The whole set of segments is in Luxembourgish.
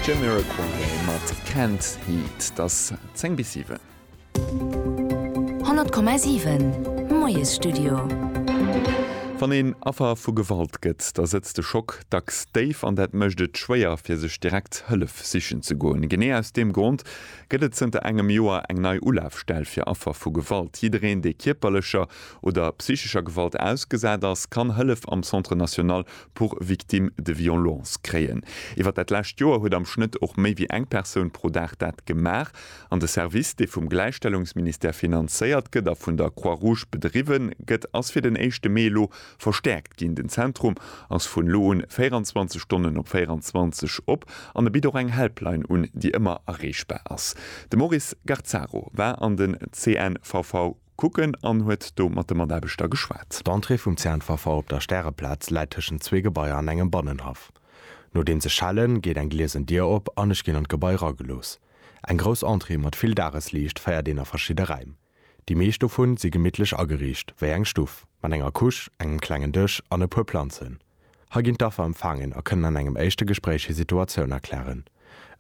Jamiroquai mat Can't Heat, et ass 10 bis 7. 100,7 Moiesstudio. Wann een Affer vu Gewalt gëtt, da sëtzt de Schock dacks déif an dat mécht et schwéier, fir sech direkt Hëllef sichen ze goen. Genee aus deem Grond gëtt et zënter engem Joer eng nei Ulafstell fir Affer vu Gewalt. Jiddereen, dee kierperlecher oder psychescher Gewalt ausgesat ass, kann Hëllef am Centre national pour victimes de violences kréien. Iwwer dat lescht Joer huet am Schnëtt och méi wéi eng Persoun pro Dag dat gemaach. An de Service, dee vum Gläichstellungsministère finanzéiert gëtt a vun der Croix-Rouge bedriwwe gëtt, ass fir den éischte Mee elo verstäerkt ginn. Den Zentrum ass vun elo un 24 Stonnen op 24 op an e bitt och eng Helpline un, déi ëmmer erreechbar ass. De Maurice Garzaro war an den CNVV. Kucken an huet do mat de Mataarbechter geschwat. D'Entrée vum Zäntwerfer op der Stäreplaz läit tëschent zwee Gebaier an engem Bannenhaff. Nodeems ech schellen, geet eng gliesen Dier op an ech ginn an d'Gebai ragelooss. Eng grouss Entrée mat vill Dagesliicht féiert een a verschidde Räim. Déi meescht dovun si gemittlech ageriicht, wéi eng Stuff, mat enger Couche, engem klengen Dësch an e puer Planzen. Hei ginn d'Affer empfaangen a kënnen an engem éischte Gespréich hir Situatioun erklären.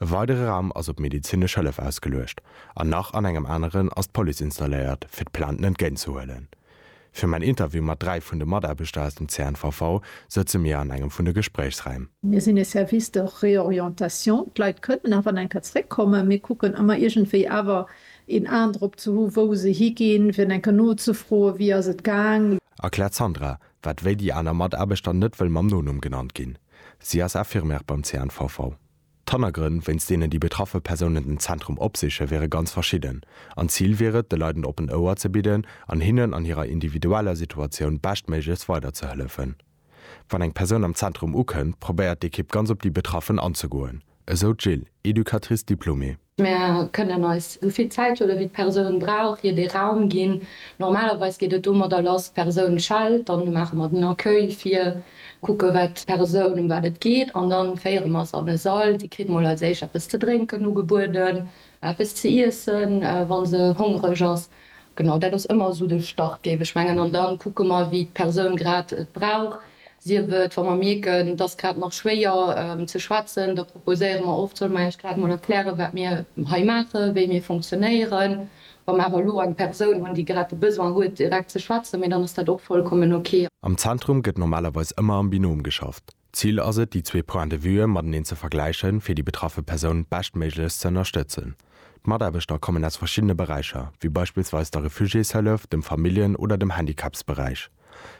E weidere Raum ass op medezinesch Hëllef ausgeluecht an nach an engem aneren ass d'Police installéiert, fir d'Plainten entgéint ze huelen. Fir mäin Interview mat dräi vun de Mataarbechter aus dem CNVV sëtze mir an engem vun de Gespréichsräim. Mir sinn e Service de réorientation, d'Leit kënnen nach an eng Kéier zeréckkommen. Mir kucken ëmmer iergendwéi awer een Aen drop ze hu wou se higinn, fir eng Kéier nozefroen, wéi ass et gaang. Erkläert d'Sandra, Wat wéi déi aner Mataarbechter net wëll mam Nonumm genannt ginn. Si ass Infirmière beim CNVV. D'Hannergrënn, wéinst deenen déi betraffe Persounen den Zentrum opsichen, wiere ganz verschidden. An d'Zil wier et, de Leit en oppent Ouer ze bidden an hinnen an hirer individueller Situatioun beschtméiglechst weiderzehëllefen. Wann eng Persoun am Zentrum ukënnt, probéiert d'Ekipp ganz op déi Betraffen anzegoen, esou d'Jill, Educatrice diplômée. Mir kënnen eis esou vill Zäithuele wéi d'Persoun brauch, hir dee Raum ginn. Normalerweis geet et domadder lass, d'Persoun schellt, dann maache mer den Accueil vir, kucke wat d'Persoun, ëm wat et geet an da féiere mer se an e Sall. Si kritt mol als éischt eppes ze drénken ugebueden, eppes ze iessen, wa se hongreg ass. Genau, dat ass ëmmer esou de Start, géif ech mengen. An da kucke mer, wéi d'Persoun grad et brauch. Sief et, wa mer mierken, et ass grad nach schwéier ze schwätzen, da proposéiere mer oft, Solle mer Iech grad emol erklären, wat mir hei maachen, wéi mir funktionéieren, wa mer awer elo eng Persoun hunn, déi grad de Besoin huet, direkt ze schwätzen, mee dann ass dat och vollkommen ok. Am Zentrum gëtt normalerweis ëmmer am Binom geschafft. D'Zil ass et, déi zwee Points de vue mateneen ze vergläichen, fir déi betraffe Persoun beschtméiglechst ze ënnerstëtzen. D'Mataarbechter kommen aus verschiddene Beräicher, wéi beispillsweis der Refugiéshëllef, dem Familljen oder dem Handicapsberäich.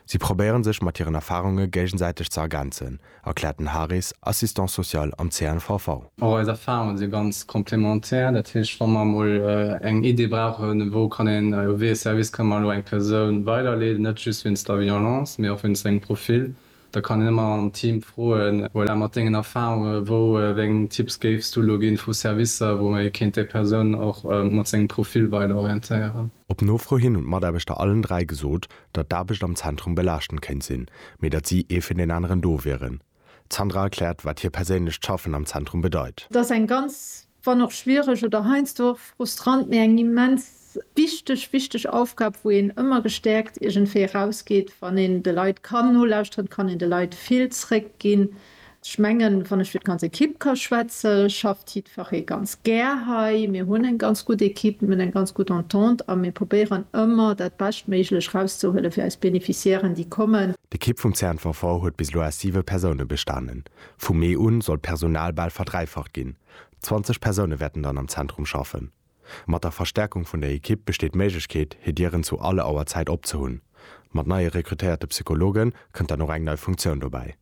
Si probéiere sech mat hiren Erfarunge géigesäiteg ze ergänzen, erkläert den Haris, Assistant social am CNVV. Och eis Erfarunge si ganz complémentaire. Dat heescht, wa mer emol eng Idee brauchen, wou kann een, wéi ee Service kënne mer elo eng Persoun weiderleeden, net just wéinst der Violence, mee och wéinst sengem Profil, Da kann een ëmmer am Team froen. Voilà, mat dengen Erfahrunge, wou wéi eng Tipps géifs du elo ginn vu Servicer, wou ee kéint déi Persoun och mat sengem Profil weider orientéieren? Op Nofro hin hunn d'Mataarbechter allen dräi gesot, datt d'Aarbecht am Zentrum belaaschtend kéint sinn, mee datt si ee fir deen aneren do wieren. D'Sandra erkläert, wat hir perséinlecht Schaffen am Zentrum bedeit. Et ass eng ganz wann och schwiereg, oder heiansdo och frustrant, mee eng immens wichteg, wichteg Aufgab, wou een ëmmer gestäerkt iergendwéi erausgeet, wann een de Leit kann nolauschteren, kann een de Leit vill zréckginn. Ech mengen, wann ech fir d'ganz Ekipp ka schwätze schafft jiddferree ganz gär hei. Mir hunn eng ganz gutt Ekipp, mir hunn eng ganz gutt Entente a mir probéieren ëmmer dat Beschtméiglech erauszehuele fir eis Beneficiairen, déi kommen. D'Ekipp vum CNVV huet bis elo aus siwe Persoune bestanen. Vu Mee un soll d'Personal bal verdräifacht ginn, 20 Persoune wäerten dann am Zentrum schaffen. Mat der Verstärkung vun der Ekipp besteet d'Méiglechkeet, hir Dieren zu alle Auerzäit op ze hunn. Mat neie rekrutéierte Psychologe kënnt dann och eng nei Funktioun dobäi.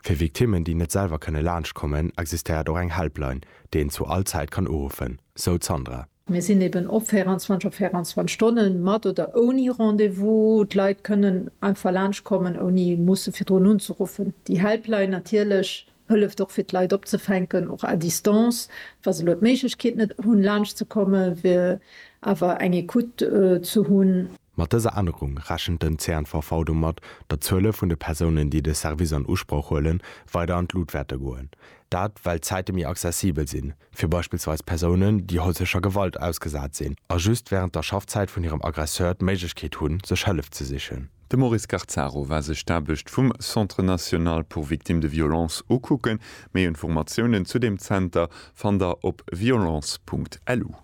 Fir Victimmen, déi net selwer kënne laanscht kommen, existéiert och eng Helpline, déi een zu all Zäit kann uruffen, sou d'Sandra. Mir sinn eben op 24 op 24 Stonnen, mat oder ouni Rendez-vous. D'Leit kënnen einfach laanschtkommen, ouni musse virdrun unzeruffen. Déi Helpline natierlech hëlleft och, fir d'Leit opzefänken, och à distance. Wa se elo d'Méiglechkeet net hunn, laanschtzekomme, wier awer eng Ecoute ze hunn. Mat dëser Ännerung rechent den CNVV domat, datt d'Zuele vun de Persounen, déi de Service an Usproch huelen, weider an d'Lut wäerte goen. Dat, well d'Zäite méi accessibel sinn, fir beispillsweis Persounen, déi häuslecher Gewalt ausgesat sinn a just wärend der Schaffzäit vun hirem Aggresseur d'Méiglechkeet hunn, sech Hëllef ze sichen. De Maurice Garzaro war sech d'Aarbecht vum Centre national pour victimes de violences ukucken. Méi Informatiounen zu deem Zenter fannt der op violence.lu.